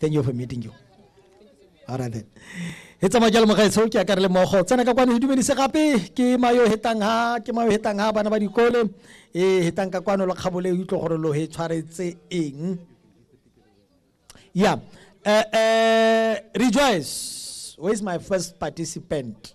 thank you for meeting you all right then e tsamaya jalo mogaetsho ke akare le mogo tsena ka kwano e dumedise gape ke mayo hetang ha ke mayo hetang ha bana ba dikole e hetang ka kwano lo kgabole e utlwe gore lo he tshwaretse eng ya eh, eh, rejoice where is my first participant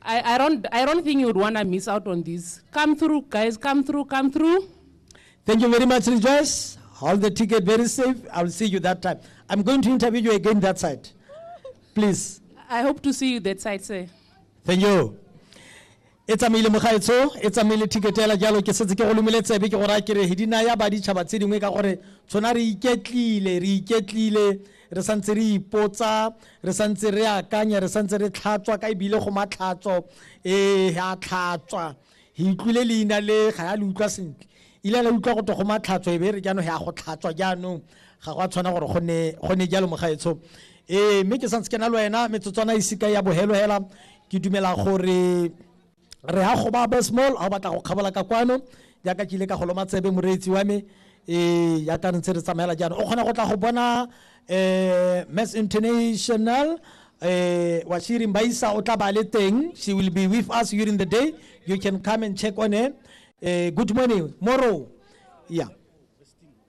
I, I, don't, I don't think you'd want to miss out on this. Come through, guys. Come through, come through. Thank you very much, Rejoice. Hold the ticket very safe. I'll see you that time. I'm going to interview you again that side. Please. I hope to see you that side, sir. Thank you. e tsamaile mogaetsho e tsamaile thiketela jalo ke setse ke go lomile tsebe ke gore a kere di naya baditšhaba tse dingwe ka gore tshwana re iketlile re iketlile re santse re ipotsa re santse re akanya re santse re tlhatswa ka ebile go matlhatso ee a tlhatswa re utlwile leina le ga ya le utlwa sentle ile la utlwa go to go matlhatso e be re jaanong ya go tlhatswa jaanong ga go a tshwana gore go ne jalo mogaetsho ee mme ke santse ke na le wena metsotswana e seka ya bohelohela ke dumela gore re ya go ba abesmall a o batla go kgabola ka kwano jaaka ke ile ka go loma tsebe moreetsi wa me ee jaaka re ntse re tsamaela jaanong o kgona go tla go bona um mass international um washiri mbaisa o tla ba le teng she will be with us during the day you can come and check on her um good morning moro yeah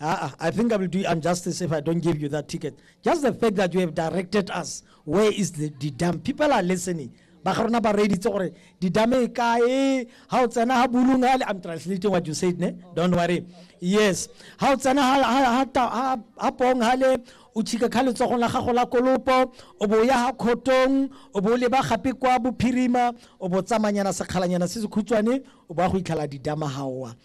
Uh, I think I will do injustice if I don't give you that ticket. Just the fact that you have directed us, where is the, the dam? People are listening. ba ga rona ba reeditse gore didame e kae ga o tsena ga bulung ale i'm translating what you said ne don't worry yes ga o tsena ga pong gale o tšhika kha letsogong la gago la kolopo o bo ya ga khotong o bo leba gape kwa bophirima o bo tsamanyana sekgalanyana se se khutshwane o bo ya go itlhala didama gaowa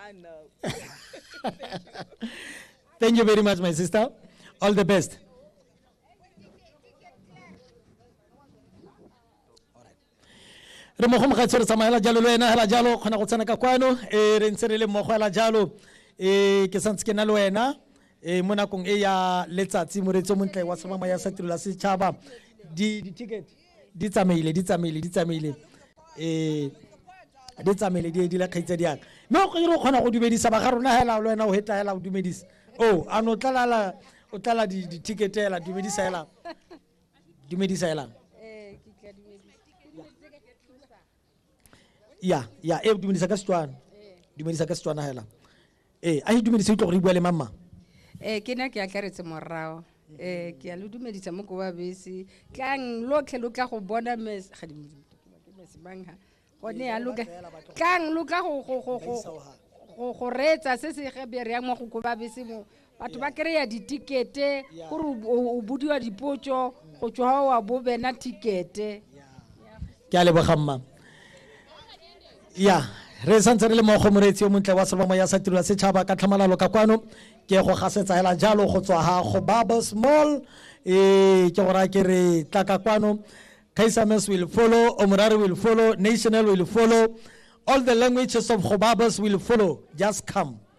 I know. Thank you very much, my sister. All the best. re mo go mogatshi re tsamaela jalo le wena hela jalo kgona go tsena ka kwano e re ntse re le mmogo hela jalo e ke santse ke na le wena e mo nakong e ya letsatsi moreetsi o montle wa semama ya sa tirelo ya setšhaba di-ticket di tsamaile di tsamaile di tsamaile eh di tsamaile di edile kgaitsa diaka mme o kgire o kgona go dumedisa ba ga rona hela le wena o hetla hela o dumedisa o a no tlalala o tlala di-ticket hela dumedisa hela dumedisa hela ya ya e dumedisa ka setswana dumedisa ka setswana hela Ee, a itumedise utlwa gore e bua le mamang. Ee, ke ne ke atlaretse morao. Ee, ke a lo dumedisa mo koba bese. Tlang lotlhe lo tla go bona mes ga di ke mes mang ha. Gone ya lo tlang lo tla go go go go go go reetsa se se ge be re yang mo go koba bese mo batho ba kry-a ditikete gore o bodiwa dipotso go tswa wa bo bena tikete ke a leboga mma ya re santse re le mo go moreetsi yo montle wa sebamo ya sa tiro ya setšhaba ka tlhamalalo ka kwano ke go gasetsa hela jalo go tswa ha go baba small e ke go raya ke re tla ka kwano kaisames will follow omorare will follow national will follow all the languages of gobabas will follow just come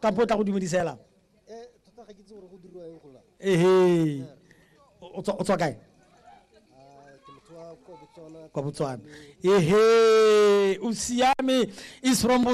ka po tla go dumedisela eh, ehe o tswa kae ah, kwa botswana ehe o siame is from